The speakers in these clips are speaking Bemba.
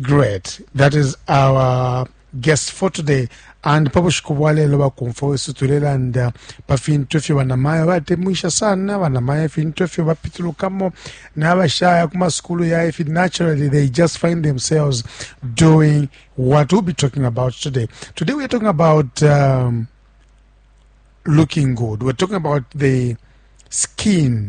Great. That is our guest for today. And pa bushiku bwa lelo bakumfwa wesu tulelanda pa fintu ifyo banamayo batemwisha sana banamayo ifintu ifyo bapitulukamo n'abashaya ku masukulu ya ifi naturally they just find themselves doing what we'll be talking about today. Today we're talking about um, looking good. We're talking about the skin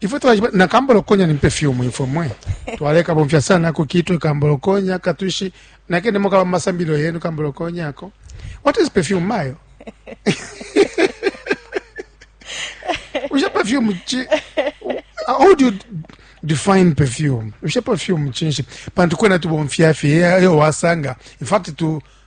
ifwe twajiba na kambolokonya ni perfume ifwe mwe twaleka bomfya sana ku kitwe kambolokonya katushi nakene moka ba masambilo yenu kambolokonya ako what is perfume mayo usha perfume chi how do you define perfume usha perfume chinshi pantu kwena tubomfya fye yo wasanga in fact tu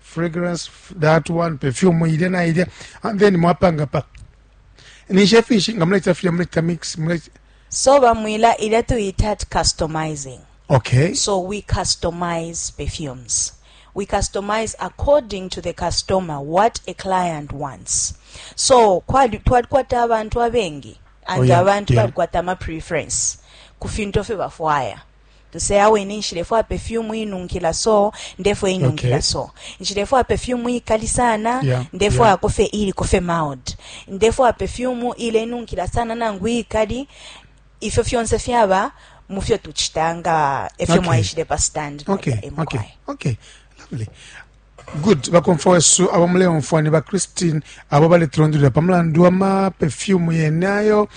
fragrance that one perfume ilya na ilya and then mwapanga pa nishe finshi nga muleta filya muleta mix muleta so bamwila ilya tuyita ati customizing okay so we customize perfumes we customize according to the customer what a client wants so twalikwata abantu abengi and oh, yeah, abantu yeah. balikwata ama preference ku fintu fye bafwaya Nse ya wene nshilefwaya perfume inunkila so ndefwa inunkila okay. so nshilefwaya perfume ikali sana yeah. ndefwaya yeah. kofe ili kofe mild ndefwaya perfume ile nunkila sana nangu ikali ifyo fyonse fyaba mufyo tuchitanga efyo okay. mwaishile pa stand okay. okay. okay. lovely Good. Bakomfwa wesu abo muleumfwa ni ba Christine abo baletulondolera pa mulandu wa ma perfume yene ayo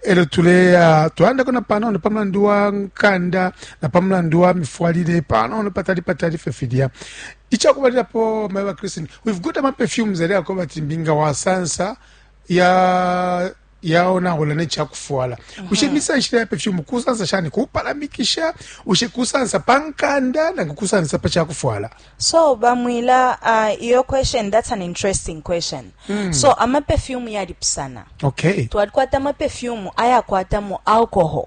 elo tuleya twalandako na panono pa mulandu wa nkanda na pa mulandu wa mifwalile panono patali patali fe filya ichakubalirapo mayi ba Christine we've got ama perfumes ali ako bati mbinga wasansa ya yaonaula ne ca kufwala bushe mm-hmm. misanshile ya pefyumu kusansa shani kupalamikisha bushe kusansa pa nkanda nangu kusansa pa ca kufwala so bamwila uh, iyo question that's an interesting question mm. so amapefyumu yalipusana okay twalikwata amapefyumu ayakwatamo alcohol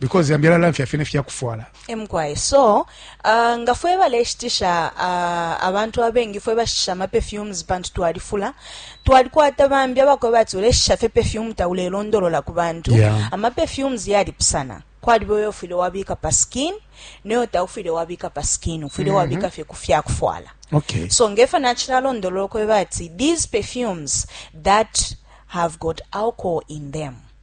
because yambi alalamfya fye nefya kufwala emkwaye so uh, nga fwe baleshitisha uh, abantu abengi fwe bashitisha amaperfumes pantu twalifula twalikwata bambi abakoba ati uleshisha fye perfume taulelondolola ku bantu yeah. amaperfumes yalipusana kwaliba oyo ofwile wabika pa skin neyo taufwile wabika pa skin ufwile mm -hmm. wabika fye ku fyakufwala okay. so ngefa nachilalondolola kweba ati these perfumes that have got alcohol in them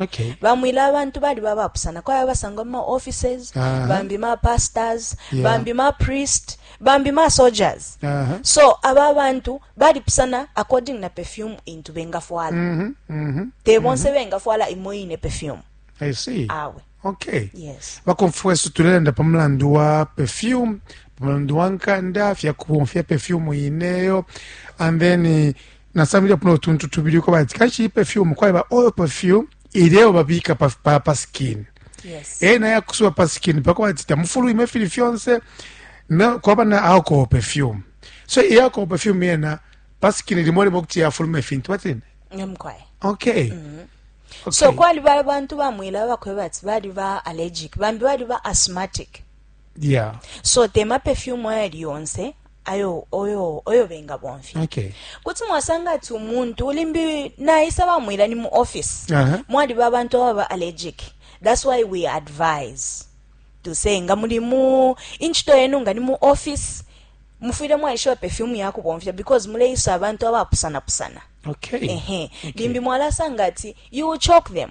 Okay. bamwile abantu bali babapusana kwaya basangwa mu maoffices uh -huh. bambi mapastors yeah. bambi mapriest bambi masoldiers uh -huh. so aba bantu balipusana according na perfume intu bengafwala mm -hmm. mm -hmm. te bonse mm -hmm. bengafwala imo ine perfume I see. awe okay yes. bakomfweso tulelanda pa mulandu wa perfume pa mulandu wa nkanda fyakubomfya perfume ineyo and then nasambilepo no tuntu tubili uko bati kanshi iyi perfume kwaliba oil perfume ileo babika pa, pa, pa skin yes. e naye akusuba pa skin pako bati tamufulwime fili fyonse na, kwaba na alcohol perfume so iyi alcohol perfume yena pa skin limo limo kuti yafuluma ifintu batini okay mm -hmm. Okay. so kwaliba abantu bamwila bakweba ati baliba allergic bambi baliba asthmatic yeah so tema perfume ayali yonse ayo oyo oyo benga bomfya okay. kuti mwasanga ati umuntu limbi naisa bamwila ni mu office uh -huh. mwaliba abantu ababa allergic that's why we advise to say nga muli mu inchito yenu nga ni mu office mufwire mwaishiba perfume yakubomfya because muleisa abantu abapusanapusana okay. uh -huh. okay. limbi mwalasanga ati you choke them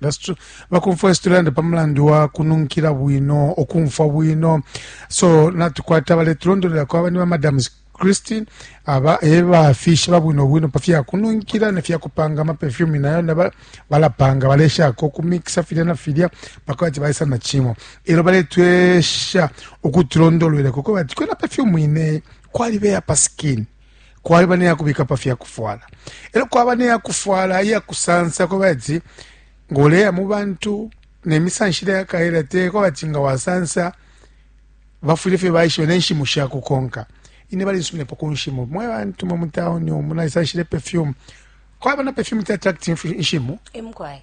That's true. Bakumfwa esi tulanda pa mulandu wa kununkila bwino, okumfwa bwino. So natukwata baletulondolera kwaba ni ba Madam Christine aba eba fishi babwino bwino pa fya kununkila ne fya kupanga ama perfume nayo na balapanga balesha ko kumixa filya na filya paka bati baisa na chimo. Elo baletwesha ukutulondolera kuko bati kwena perfume ine kwali beya pa skin. Kwaliba ne ya kubika pa fya kufwala, e lyo kwaba ne ya kufwala iya kusansa. Kwaba ati nga uleya mu bantu ne misanshile ya kaela, te kwaba ati nga wasansa bafwile fye baishiba ne nshimu sha kukonka. Ine balinsuminepo ku nshimu, mwe bantu mwe mu tauni umu naisanshile perfume. Kwaba na perfume te attract inshimu. Emukwaye.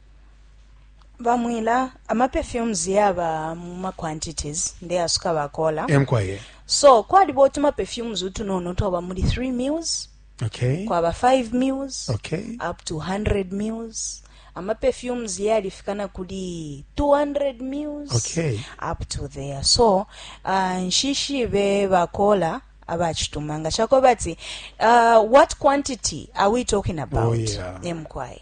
Ba Mwila, ama perfumes yaba mu ma quantities, ndeasuka ba Kola. Eh, mukwai. So, kwaliba utuma perfumes utunono twaba muli 3 mils, Okay. kwaba 5 mils, Okay. up to 100 mils. Ama perfumes yalifika na kuli 200 mils, Okay. up to there. So, uh, nshishibe ba Kola abachituma nga chakweba ati uh, what quantity are we talking about? Oh, yeah. Eh, mukwai.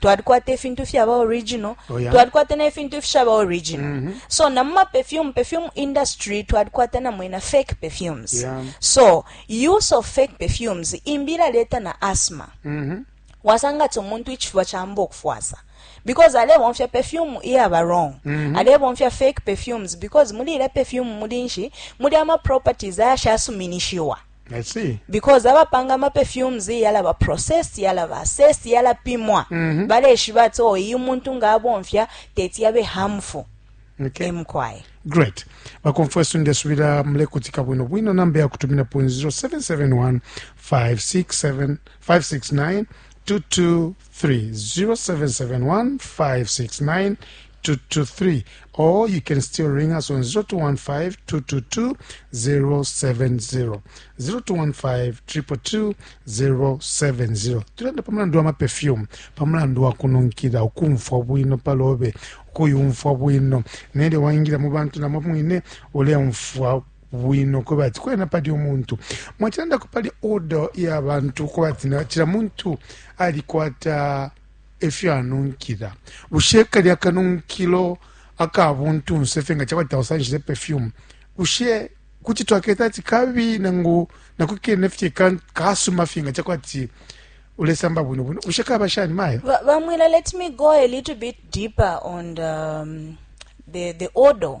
twalikwata ifintu fyaba original oh, yeah. twalikwata na ifintu ifishaba original mm -hmm. so na muma perfume perfume industry twalikwata na mwena fake perfumes yeah. so use of fake perfumes imbira leta na asthma mm -hmm. wasanga ti omuntu ichifuba chamba okufwasa because alebomfya perfume iyaba wrong mm -hmm. alebomfya fake perfumes because muli ile perfume muli nshi muli ama properties ayashasuminishiwa because abapanga ama perfumes yalaba process yalaba assess yalapimwa mm -hmm. baleshiba ati oh iyi umuntu nga abomfya teti yabe harmful okay. emkwaye great bakomfwa esu ndesubira mulekutika bwino bwino namba yakutumina po 0771 567 569 22 0771569223 or you can still ring us on 0215222070 0215222070 tulenda pa mulandu wa maperfume pa mulandu wa kununkila ukumfwa bwino pa lobe ukuyumfwa bwino nelyo waingila mu bantu namo mwine uleumfwa bwino kweba ati kwena pali umuntu mwacilandako pali order ya bantu kuba ati na cila muntu alikwata efyo anunkila bushe kali akanunkilo aka buntunse fye nga cakwati tausanshile perfume bushe kuti twaketa ati kabi nangu nako kene fye ka- kasuma fye nga cakwati ulesamba bwino bwino bushe kaba shani mayo Va- Vamwila, let me go a little bit deeper on the, um, the, the odor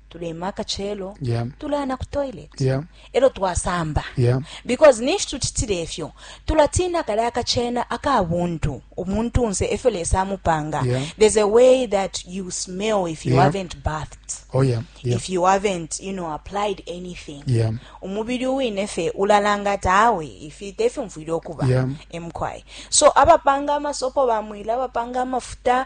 tulema akacelo yeah. tulaya na ku toilet yeah. elo twasamba yeah. because ninshi tucitile efyo tulatiina kale akacena aka buntu umuntu nse efyo lesa amupanga yeah. there's a way that you smell if you yeah. haven't bathed oh, yeah. Yeah. if you haven't you know applied anything yeah. umubili uwine fe ulalanga ati awe ifi tefyo mfwile okuba yeah. emkwai so abapanga amasopo bamwila abapanga amafuta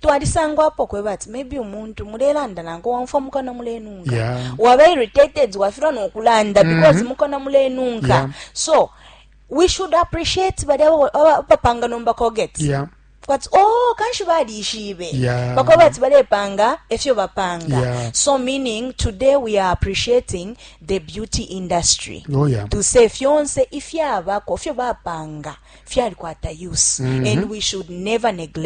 twalisangwapo kweba ati maybe umuntu mulelanda nanko wamfwa mukona mulenunka yeah. waba irritated wafilwa nokulanda mm -hmm. because mm-hmm. mukona mulenunka yeah. so we should appreciate bali abapanga nomba colgate yeah. kwati o oh, kanshi balishibe yeah. bakuba bati balepanga efyo bapanga yeah. so meaning today we are appreciating the beauty industry oh, yeah. to say fyonse ifyabako fyo bapanga fyalikwata use mm -hmm. and we should never neglect